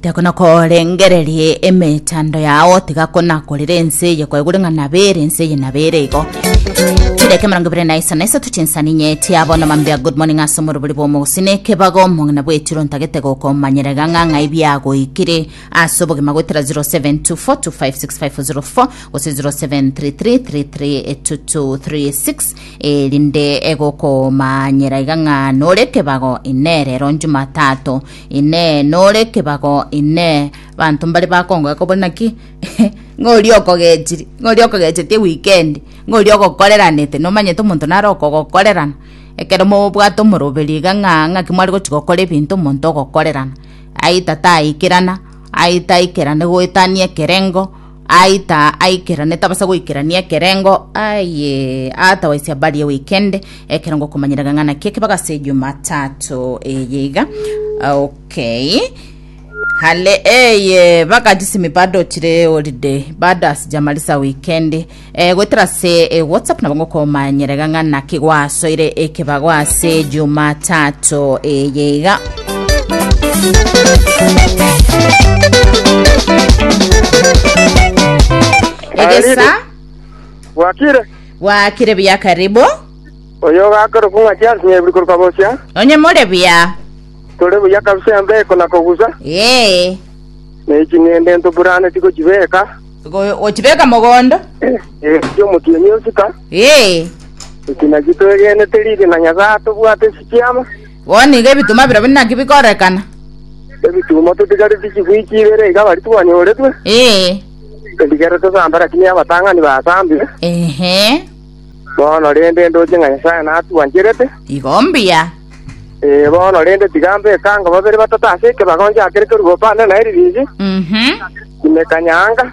tekonakorengererie emechando yao tiga konakorera ense eye kwaigure ng'a nabere ense eye nabere igo chideka emerongo ebere na isa na isato chinsani inye chiabono mambia good morning ase omorobori bwa omogusini ekebago omong'ina bwetiro ntagete gokomanyera iga ng'a ng'ai biagoikire ase obogima goetera 0724256504 gose 0733332236 erinde egokomanyera iga ng'a nore kebago ine rero Jumatatu, ine nore kebago ine banto mbare bakongoe kobori naki ng'ori okogechiri ng'ori okogechetie wikendi ng'ori ogokoreranete nomanyete omonto nare okogokorerana ekero mobwate omoroberi iga ng'a ng'aki mware gochi gokora ebinto omonto ogokorerana aita taikerana aita aikerane goetania ekerengo Aita aikerane, tabasa goikerania ekerengo, aye atabaisia barie weekend ekerengo komanyerega ng'a naki ekebego ase Jumatatu eye iga. Okay. Hale eye bakajisimi bado chire holiday bado ase jamarisa weekend eh, goetera ase eh, whatsapp nabo ngokomanyerega ng'a naki gwasoire ekebago ase Jumatatu eye iga. egesa bwakire bwakire buya karibu oyo ogakora kung'a chiasi nyebiri koruka bosia onye more buya tore buya kabisa embeko na kogusa ee neching'ende ntoburane tigochibeka Go- gochibeka mogondo echi omotienyi osika ee ekina chitoegenete riri na nyasaye atobwate sichiama Bono nigo ebituma birobio naki bikorekana. Ebituma totigareti chifwiki ibere iga bari twanyoretwe. Ee. Endigere tosambe rakini abatang'ani basambire. Ehe. Bono rende ndoche ng'a Nyasae natwancherete. Igo mbuya. Ee, bono rende tiga mbeke ango babere batato ase ekebago njakere keruba opande naye ririzi. Mhm. Imeka nyaanga.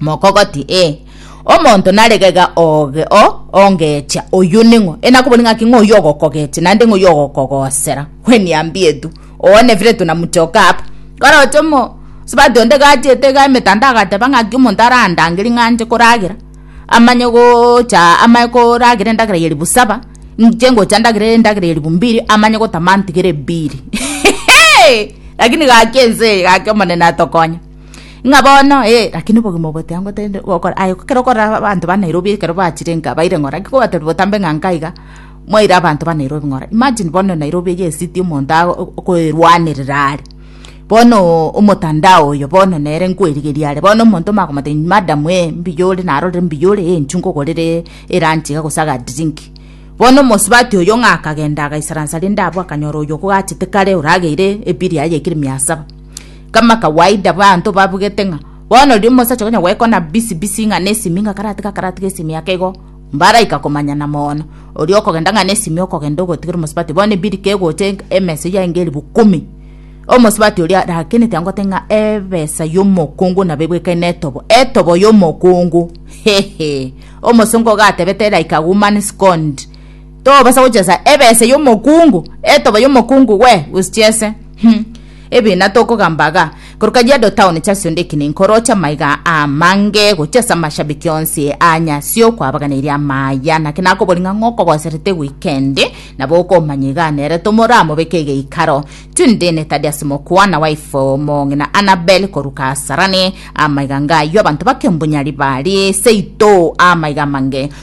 mokogoti, ee, omonto nare gega oge o ongeecha, oyio ning'o? Enakobori ng'aki ng'o oyio ogokogeecha, naende ng'o oyio ogokogosera? Kweniambia etu, oone vire tunamuchoka aba. Koroche omo sibati onde gachete iga emetanda agateba ng'aki omonto arandange ring'anche koragera, amanye gocha amaye koragera endagera ya ribu saba, inche ngocha ndagere endagera ya ribu mbiri, amanye gotama antigere mbiri. Lakini gaki ense eye, gaki Omonene atokonye. Ng'a bono ee, rakini obogima obo botiga ngotebi nde gokora aye ekero okorora aba abanto ba Nairobi ekero bachire nka baire ng'ora ki kobatebi botambe ng'a nka iga, mwaire abanto ba Nairobi ng'ora. Imagine bono Nairobi eye esiti omonto ago o- okoerwanerera are. Bonoo omotandao oyo bono nere nkwerigeria are, bono omonto omakomotebia ng'a madam ee mbuya ore narorire mbuya ore ee inchuka ogorere elunch iga gose agadrink. Bono omosubati oyo ng'a akagenda agaisaransa rende abwo akanyora oyo okogachete kare orageire ebili yaye ekire mia saba. Kama kawaida abanto babugete ng'a bono riria omosacha okonya goekwana busy busy ng'a na esimi ng'a karatiga karatiga esimi yake igo, mbaraika komanyana mono. Oria okogenda ng'a na esimi okogenda ogotigera omosubati bono ebirika egocha emesa eyio aenge elifu kumi. Omosubati oria arakenete angwo ate ng'a ebesa y'omokungu nabo ebwekaine na etobo, etobo y'omokungu hehe. Omosongo iga atebete like a woman scorned tobasa gochesa ebesa y'omokungu, etobo y'omokungu we! Usichese. Ebina tokogamba iga, korwa Kajiado Town chiasio ndikina enkoro chi'amaiga amange gochia ase amashabiki onsi a nyasio kwabaganeirie amaya. Naki nakobori ng'a ng'okogoserete weekend, nabo okomanya iga nere tomoramobeke egeikaro. Tune Dene tadi ase mokwana wife omong'ina Annabel korwa Kasarani, Amaiga ng'ayio abanto bakembunya ribaria, seito amaiga amange.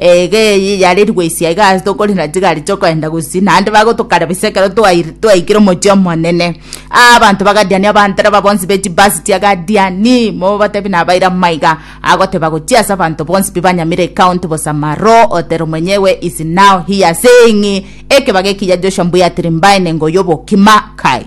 Eege eye yarerigwe ise aiga ase tokore na chigari chokoenda gusii, naende bagotokara bise ekero twair- twaikire omochie omonene. Aa abanto bagadiania abandereba bonsi be chibasi chia Gadiani, mobatebie nabaire amaiga, agoteba gochia ase abanto bonsi pi banyamire ekaunti bosa Maro, Otero mwenyewe, is now here, saying, Ekebaga ekiya Joshua mbuyatiri mbae nengo y'obokima, Kai.